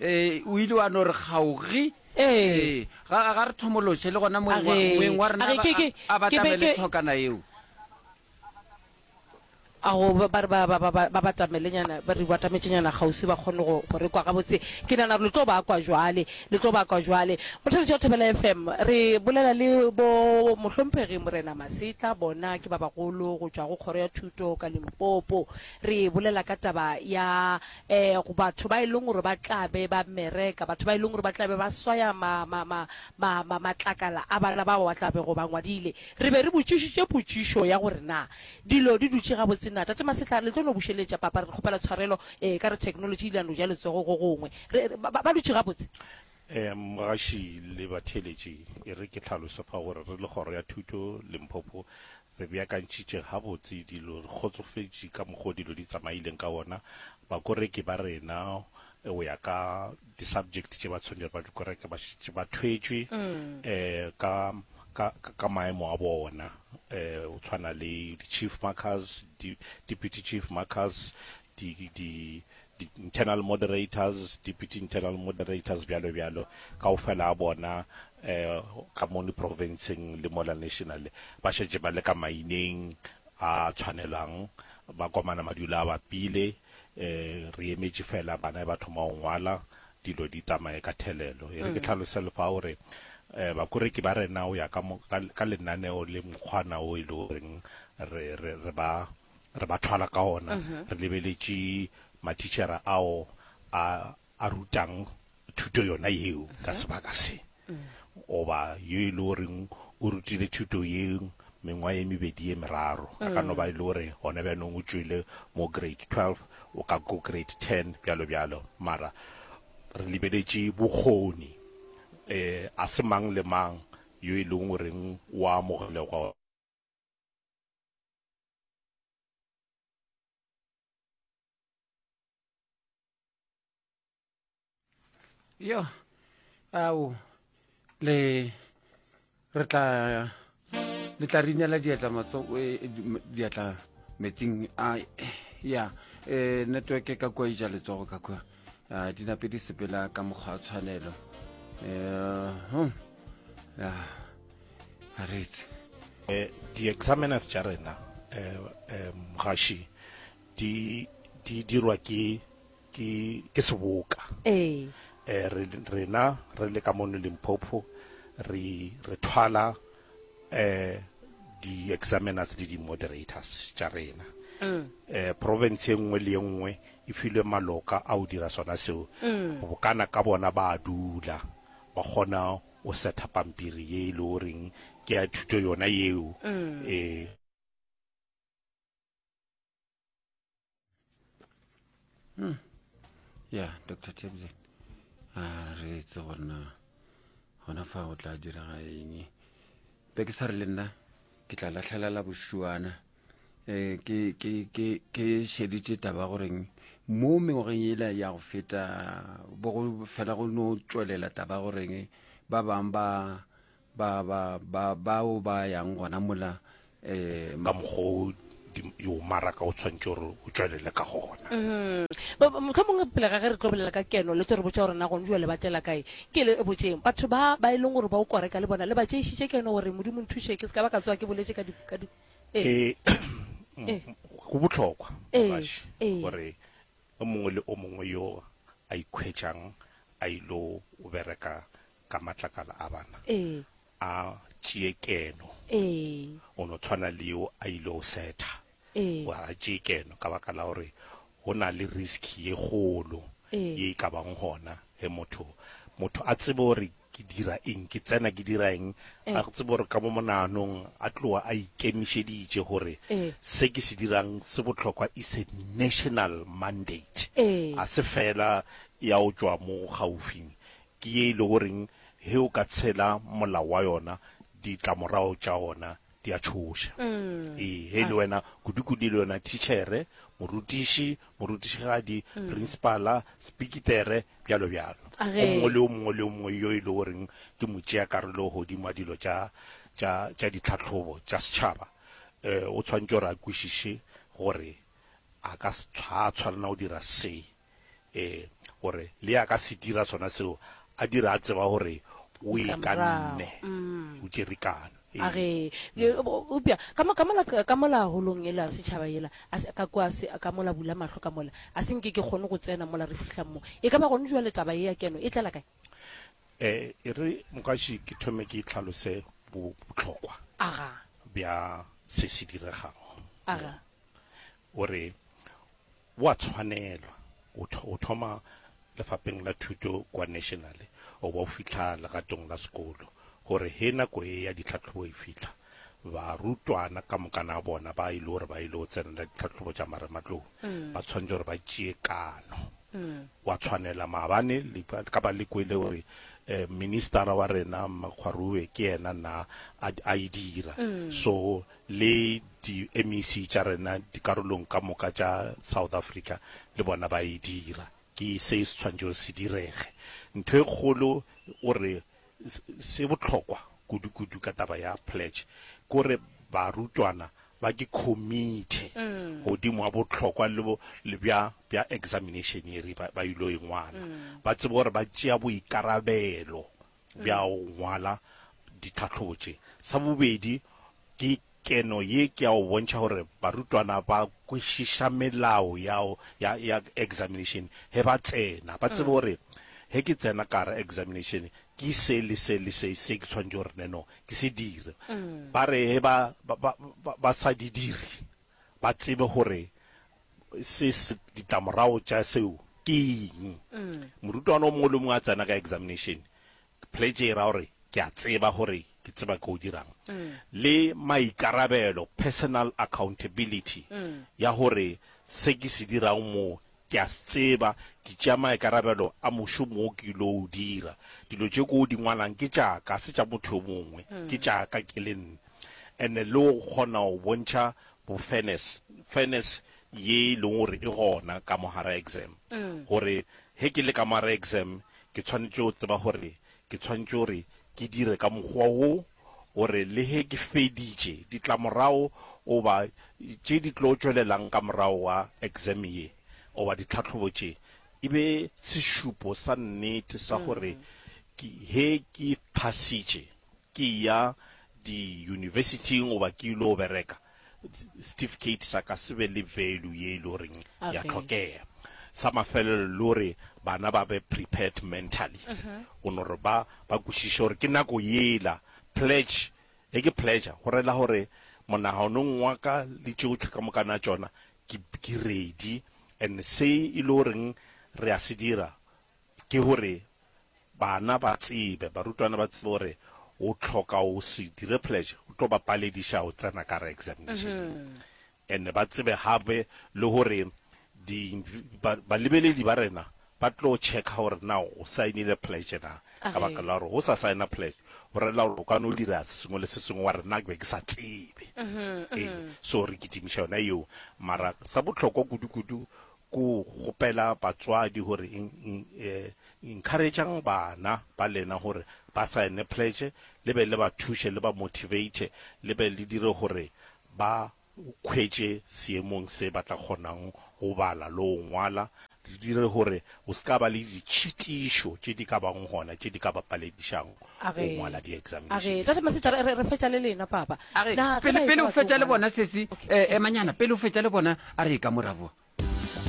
Ee, o ile wa no re kgaogi. Ee. Ee, ga, ga re thomološe, le gona moeng wa, Age- moeng wa rena age a ba- ke- ke- a- a ke be batamele ke- thokana yeo. a go ba re ba ba ba ba- ba batamelenyana ba re batametšenyana kgauswi ba kgone go go re kwa gabotse ke nana gore le tlo ba kwa jwale le tlo ba kwa jwale mothaledi wa thobela fm re bolela le bo mohlomphegi morena masetla bona ke ba bagolo go tšwa go kgoro ya thuto ka limpopo re bolela ka taba ya Ee, go batho ba e leng gore ba tla be ba mmereka, batho ba e leng gore ba tla be ba swaya ma, ma, ma, ma, ma, matlakala a bana bao ba tla bego ba ngwadile. Re be re botšišitše potšišo ya gore na dilo di dutše gabotse na. Tate Masetlha, le tlo no bušeletša, Papa, re kgopela tshwarelo, ee, e ka re theknolotši e ile ya no ja letsogo go gongwe. Re, re, ba, ba dutše gabotse? Ee, Mgaši le batheeletši, e re ke hlalose fa gore re le Kgoro ya Thuto, Limpopo, Re beakantšhitše gabotse dilo, re kgotsofetše ka mokgo dilo di tsamaileng ka wona. Bakoreki ba rena, go ya ka di-subject tše ba tshwanetšego ba di koreke, ba šetše ba thwetšwe ka, ka, ka maemo a bona, go tshwana le di-chief markers, di-deputy chief markers, di, di, di internal moderators, deputy internal moderators, bjalo bjalo, ka o fela a bona eh, ka moni provinceng le mola national, ba šetše ba le ka maineng a tshwanelang, ba komana madula a bapile, eh, re emetše fela bana ba thoma go ngwala, dilo di tsamaye ka thelelo. E re ke mm. tlhalose lefa gore eh bakoreki ba rena o ya ka ka lenaneo le mokgwana o ile e goreng re re re ba re ba thwala ka ona re lebeletše matitšhere ao a a rutang thuto yona yeo ka sebaka se goba yo e le goreng o rutile thuto ye mengwa ye mebedi ye meraro a ka no ba e le gore gona bjanong o tšwele mo grade 12 o ka ko grade 10 bjalo bjalo mara re lebeletše bokgoni um a se mang le mang yo e leng goreng wa amogelegwa yo ao le re tla le tla re inela diatla matso e, e, diatla metsing a ya um network ka kua ija letsogo ka kua a di nape di sepela ka mokgwa wa tshwanelo um a retse eh, di-examiners tša rena um gaši di di dirwa ke ke ke seboka eh rena re le ka mono limpopo re re thwala eh di examiners le di moderators tša rena eh province e nngwe le e nngwe e filwe maloka a o dira sona seo bokana ka bona ba a dula ba kgona o setha pampiri ye e le o reng ke ya thuto yona yeo eh hmm. ya dr tebze a ah, re etse gore na gona fa o tla direga eng be ke sa re le nna ke tla latlhelela bošuana um ke šeditše taba goreng mo mengwageng ela ya go feta bogo fela go no tšwelela taba goreng ba bangwe ba ba ba ba bao ba yang gona mola eh, ka mokgwa o di- yo maraka o tshwanetse gore o tswelele ka gona motlho mongwe pele ga ge re tlo bolela ka keno le tlo re botsa gore na gone jale ba tlela kae ke le botseng batho ba ba e leng gore ba o koreka le bona le ba tšeišitše keno gore modimo nthuše ke se ka ba ka tsoa ke boletse ka di- ka di- ee. Eh, m- go bohlokwa Eh, Mogaši, eh. gore o mongwe le o mongwe yo a ikhwetšang a ilo o bereka ka matlakala a bana ee a tšee keno ee o no tshwana le yo a ile o setha ee wa a tšee keno ka baka la gore go na le risk ye kgolo Ee. ye e ka bang gona ge motho motho a tsebe gore ke dira eng ke tsena ke dira eng a tsebe gore ka mo monaganong a tloga a ikemišeditše gore Ee. se ke se dirang se bohlokwa is a national mandate Ee. a se fela ya o tšwa mo gaufing Ke ye e lego reng ge o ka tshela molao wa yona, ditlamorago tša gona di a tšhoša. Ee, ge e le wena, kudukudu e le yona thitšhere, morutiši, morutišigadi, prinsipala, sepikitere, bjalo bjalo, go mongwe le yo mongwe le yo mongwe yo e lego reng ke motšeakarolo godimo ga dilo tša, tša, tša ditlhahlobo tša setšhaba, o tshwanetše gore a kwešiše gore a ka se, ga a tshwanela go dira se. ee, gore le ya ka se dira sona seo, a dira a tseba gore o e ka nne, mm. o tšerikana. a re upša ka mola holong e la setšhaba ela ka kwa ka mola bula mahlo ka mola a se nke ke kgone go tsena mola re fihlang mo e ka ba gone jwa letaba e ya keno e tlela kae um e re mokaši ke thome ke tlhalose botlhokwa bja se se diregago o re O a tshwanelwa o tho, o thoma lefapheng la thuto kua National o ba o fihla legatong la sekolo, gore he nako ye ya ditlhahlobo e fihla, barutwana ka mokana bona ba e le gore ba ile go tsenela ditlhahlobo tša marematlou ba tshwanetše gore ba tšee kano. O a tshwanela maabane le ka, ka ba le kwele gore um ministara wa rena Mmakgwaruwe ke yena na a, a e dira. So le di MEC tša rena dikarolong ka moka tša South Africa le bona ba e dira, ke se se tshwanetšego se direge. Ntho e kgolo gore se bohlokwa kudu kudu ka taba ya pledge ke gore barutwana ba ke committe godimo ga bohlokwa le bja bja examination ye re ba ba yilo e ngwala, ba tsebe gore ba tšea boikarabelo bja go ngwala ditlhahlobo tše. Sa bobedi, ke keno ye ke ya go bontšha gore barutwana ba kwešiša melao ya ya ya examination ge ba tsena, ba tsebe gore ge ke tsena ka gare examination ke se le se le se se ke tshwanetse gore neno ke se dire. Ba re ge ba ba ba ba sa di dire ba tsebe gore Se, se, ditlamorago tša seo ke eng? Morutwana o mongwe le o mongwe a tsena ka examination, pledge e ra gore, Ke a tseba gore ke tseba ke o dirang. Le maikarabelo, personal accountability, ya gore se ke se dirang mo, ke a se tseba, ke tšea maikarabelo a mošomo wo ke ylo o dira. Dilo tše ko o di ngwalang ke tša ka, ga se tša motho yo mongwe, ke tša ka ke le nna. And-e le go kgona go bontšha bo fairness, fairness ye e leng gore e gona ka mo gara exam, gore he ke le ka mo gara exam ke tshwanetše go tseba gore ke tshwanetše gore ke dire ka mokgwa wo gore le he ke feditše, ditlamorago goba tše di tlo tšwelelang ka morago ga exam ye goba ditlhahlobo tše e be sešupo sa nnete sa gore he ke phasitše. Ke ya di university-ing goba ke ilo bereka, certificate sa ka se be le value ye e le goreng ya Okay. tlhokega. Sa mafelelo le gore bana ba be prepared mentally go no re ba ba kwešiše gore ke nako yela pledge e ke pledge go rela gore monaganong wa ka le tšotlhe ka mokana tšona ke ke ready and se e le goreng re a se dira Ke gore bana ba tsebe, barutwana ba tsebe gore o tlhoka o se dire pledge, o tlo ba palediša go tsena ka gare examinationeng. And ba tsebe gape le gore di, ba, balebeledi ba rena ba tlo checka gore na o saenile pledge na. Ka baka la gore go sa saena pledge, go relela gore o ka no dira se sengwe le se sengwe wa re nna ke be ke sa tsebe. Ee, so re kitimiša yona yeo. Mara sa bohlokwa kudu-kudu, Ku kgopela batswadi gore encourage'ng bana ba lena gore ba sign-e pledge, le be le ba thuše, le ba motivate, le be le dire gore ba hwetše seemong se ba tla kgonang go bala le go ngwala, le dire gore go se ka ba le ditšhitišo tše di ka bago gona tše di ka ba paledišago A re, a re, Tate Masetara, re, re fetša le lena, Papa. A re, Na ke Pele, pele o baetša fetša le batho, bona, Sesi, Okay. eh, emanyana, pele o fetša le bona, a re eka morabo.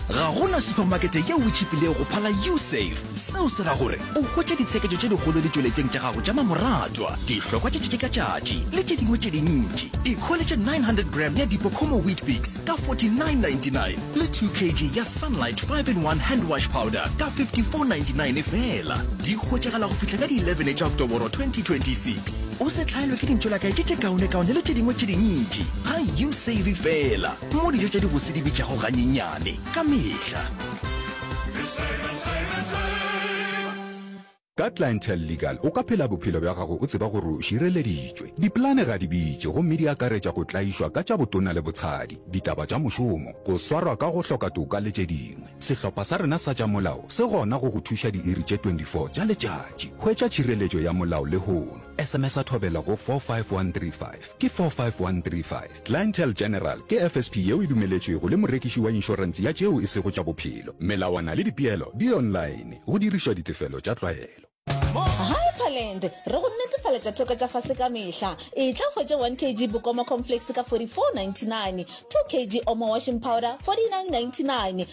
Ga go na supamakete yeo e tšhipilego go phala U-Save. Seo se ra gore o hwetše ditsheketšo tše dikgolo ditšweletšweng tša gago tša mamoratwa, dihlokwa tša tšatši ka tšatši le tše dingwe tše dintši. Ikhweletše 900 gram ya Dipocomo Weet-Bix ka 49.99. le 2 kg ya sunlight 5 in 1 hand wash powder ka 5499 fela di hwetšagala go fihla ka di 11 tša oktoboro 2026 o se hlaelwe ke dintšolakae tše tše kaonekaone le tše dingwe tše dintši ga you save fela mo dijo tša dibose di bitšago ganyenyane ka mehla Ka Clientele Legal o ka phela bophelo bja gago o tseba gore o šireleditšwe. Dipolane ga di bitše gomme di akaretša go tlaišwa ka tša botona le botshadi, ditaba tša mošomo, go swarwa ka go hloka toka le tše dingwe. Sehlopha sa rena sa tša molao se gona go go thuša diiri tše 24 tša letšatši. Hwetša tšhireletšo ya molao lehono. SMS-a Thobela go 45135. ke 45135. Clientele General ke FSP yeo e dumeletšwego le morekiši wa inšorense ya tšeo e sego tša bophelo. Melawana le dipeelo di online, go dirišwa ditefelo tša tlwaelo. Hyperland, re go netefaletša theko tša fase ka mehla. Etla hwetše 1 kg Bokoma Cornflakes ka 44.99, 2 kg Omo Washing Powder 49.99,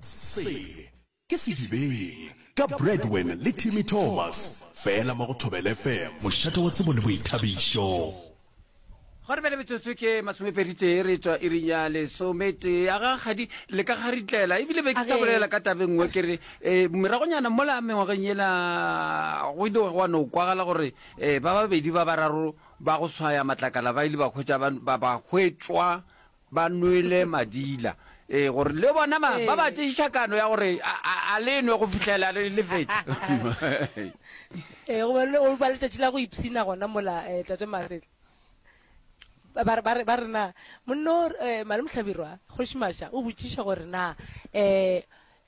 Sele ke sedibeng ka Bradwin le Timmy Thomas fela mo go Thobela FM. Mošate wa tsebo le boithabišo. Gwa re bjale metsotso ke masomepeditee re tšwa iring ya lesometee. Aga kgadi le ka garitlela ebile be ke sa bolela ka tabe nngwe ke re um meragonyana mola mengwageng yela go ile gwa no kwagala gore um ba babedi ba bararo ba go swaya matlakala ba ile ba hwetša ba ba hwetšwa ba nwele madila, ee, gore le bona ba, ba ba tšeiša kano ya gore a, a, a le nwe go fihlela le, le fetša. Ee, go ba, go ba letšatši la go ipshina gona mola, eh, Tate Masetla. Ba, ba, ba, ba re na, monno, eh, Malemohlabirwa, Kgoši Masha o botšiša gore na, eh,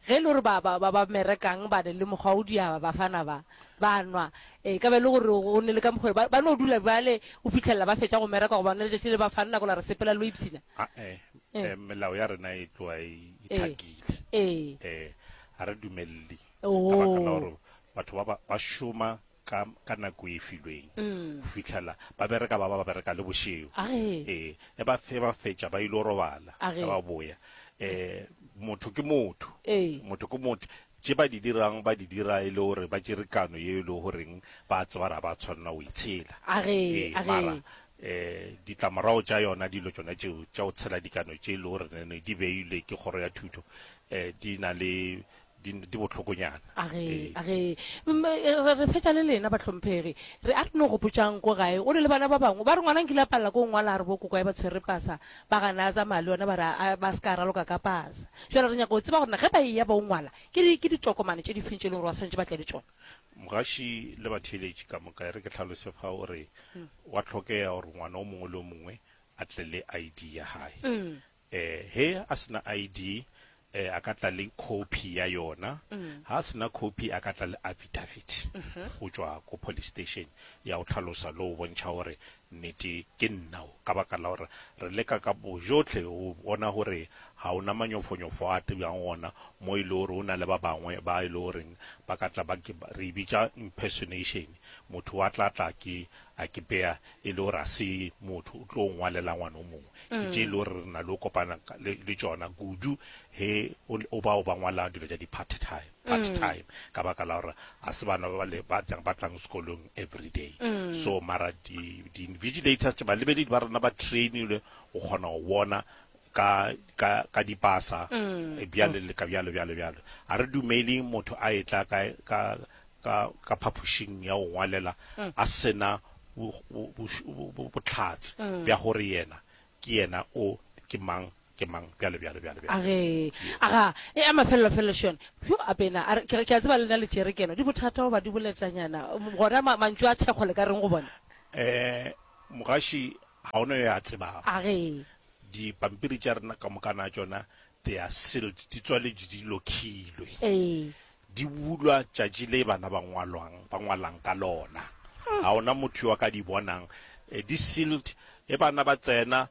Ge e le gore ba, ba, ba ba merekang ba ne le mokgwa o diaba bafana ba, ba nwa, e ka ba e le gore go ne le ka mokgwa ba, ba no dula bjale go fihlelela ba fetša go mereka goba ne letšatši le ba fang nako la re sepela lo ipshina. A-e, Eh. eh, melao ya rena e tloa e e Eh. hlakile. Ee. Eh, ga re dumelele ka baka la Oo. gore batho ba ba, ba šoma ka ka nako e filweng go fitlhela ba bereka ba ba ba bereka le bošego A ge. ee e ba fe ba fetša ba ile go robala A ge. ge ba boya eh motho ke motho Ee. motho ke motho tše ba di dirang ba di dira e le gore ba tšere kano ye e le goreng ba tseba ra ba tshwanela go itshela A ge, Ee, a ge. mara eh ditlamorago tša yona dilo tšona tšeo tša go tshela dikano tše e le gore ne di beilwe ke kgoro ya thuto eh di na le di, di bohlokonyana. A re, Ee, a re, mm, eh, re re fetša le lena bahlomphegi. Re a re no gopotšang ko gae, o ne le bana ba bangwe. Ba re ngwana nkile a palela ko ngwala a re bo kokwae ba tshwere pasa, ba gana a tsamaya le yona ba re a, ba se ka raloka ka pasa. Jwale re nyaka go tseba gore na ge ba eya ba o ngwala, ke di, ke ditokomane tše di feng tše e leng gore ba swanetše ba tle le tšona. Mogaši le batheeletši ka moka, e re ke hlalose fa o re, gwa hlokega gore ngwana o mongwe le o mongwe a tle le ID ya gae. Eh, he a se na ID, eh, a ka tla le copy ya yona. Ha a se na copy, a ka tla le affidavit go tšwa ko police station ya go tlhalosa le go bontšha gore nnete ke nna o. Ka baka la gore re leka ka bojotlhe go bona gore ga o na manyofonyofo a tebjang gona mo e le gore o na le ba bangwe ba e le goreng ba ka tla ba ke, re e bitša impersonation, motho wa tla tla ke a ke beya e le gore ga se motho o tlo ngwalela ngwana o mongwe, ke tše e le gore re na le go kopana le, le tšona kudu ge o, o bao ba ngwala dilo tša di-part time, part time, ka baka la gore ga se bana ba, le, ba, ba tlang sekolong everyday. So mara di, di-invigilators, tše, balebeledi ba rena ba train-ilwe go kgona go bona ka, ka, ka dipasa, bjale le ka bjalo, bjalo, bjalo. A re dumele motho a etla ka, ka, ka, ka phapošing ya go ngwalela a se na bo, bo, boš-, bo, bo, bohlatse bja gore yena ke yena o, ke mang, ke mang, bjalo, bjalo, bjalo, bjalo. A re, Aga, e a mafelelo felo šone. Bjo, a bena, a re, ke, ke a tseba le na le tšerekeno, di bothata goba di boletšanyana, gona ma, mantšu a thekgo le ka reng go bona? Ee, mogaši, ga go na yo a tsebago. A re, Dipampiri tša rena ka moka na tšona they are sealed, di tswaletšwe, di lokhilwe, Ee. di bulwa tšatši le bana ba ngwalwang, ba ngwalang ka lona. Ga ona motho yo a ka di bonang, eh, di sealed, ge bana ba tsena,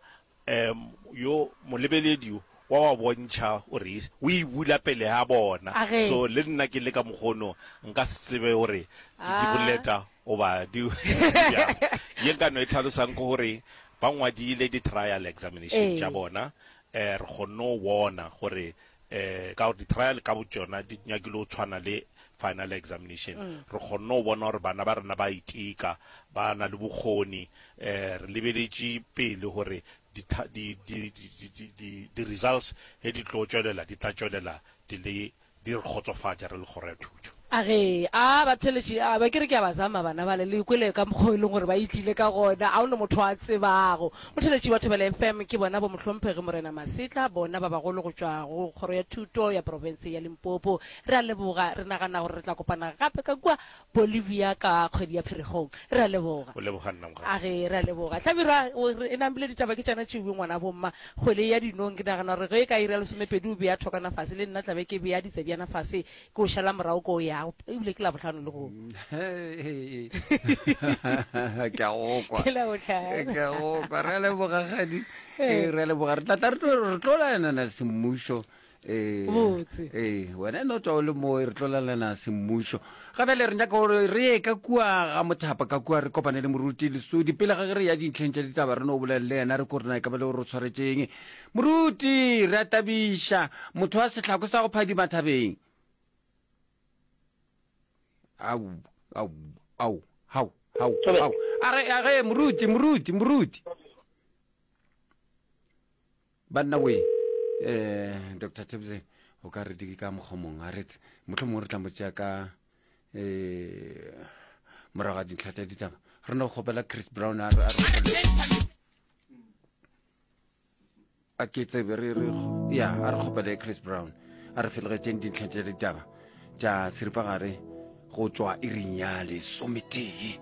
um yo molebeledi o wa ba bontšha o re is, o e bula pele ga bona. Age. So le nna ke le ka mokgwa ono nka se tsebe gore ke di Ah. boleta Goba di bjang. Ye nka no e hlalosang ke gore ba ngwadile di trial examination tša bona, eh, re kgonne go bona gore eh, ka gore di trial ka botšona di nyakile go tshwana le final examination, re kgonne go bona gore bana ba rena ba a iteka, ba na le bokgoni, eh, re lebeletše pele gore di, di, di, di, di, di, di results ge di tlo tšwelela di tla tšwelela di le Di re kgotsofatša re le Kgoro ya Thuto. A re, A batheeletši, a be ke re ke a ba zama bana bale, le kwele ka mokgo e leng gore ba e tlile ka gona. A go na motho a tsebago? Motheeletši wa Thobela FM ke bona Bomohlomphegi Morena Masetla, bona ba bagolo go tšwa go Kgoro ya Thuto ya Profense ya Limpopo. Re a leboga. Re nagana gore re tla kopana gape ka kua Bolivia ka kgwedi ya Pheregong. Re a leboga. O leboga nna mokgadi. A re, re a leboga. Hlabirwa o re, Enang bile ditaba ke tšona tšeuwe, ngwana bomma. Kgwele ya dinong, ke nagana gore ge e ka iri ya lesomepedi o bea thokwana fase, le nna tla be ke bea ditsebjana fase, ke o šala morago ke o ya. Eupša ke Labohlano le go. Ke a go kwa. Ke Labohlano. Ke a go kwa. Re a leboga, kgadi. Ee, re a leboga. Re tla tla re tlo laelana semmušo. Ee, Botse. ee, wena e no tswa o le mo re tlo lalana semmušo ga bjale re nyaka gore re ye ka kua ga mothapa ka kua re kopane le moruti lesodi pele ga ge re ya dintlheng tša ditaba re no bolele le yena re ko rena e ka ba le gore o tshwaretseng moruti re a tabiša motho wa setlhako sa go phadima thabeng au au au hau hau hau a re a re moruti moruti moruti banna we um doctor tebze o ka re di ka mokgomong a ret motlho mongwe re tla mo tšea ka um morago ga dintlha tsa ditaba re no kgopela chris brown a ke tsebe re re ya a re kgopele chris brown a re felegetseng dintlha tsa ditaba tša seripagare go tšwa iring ya lesometee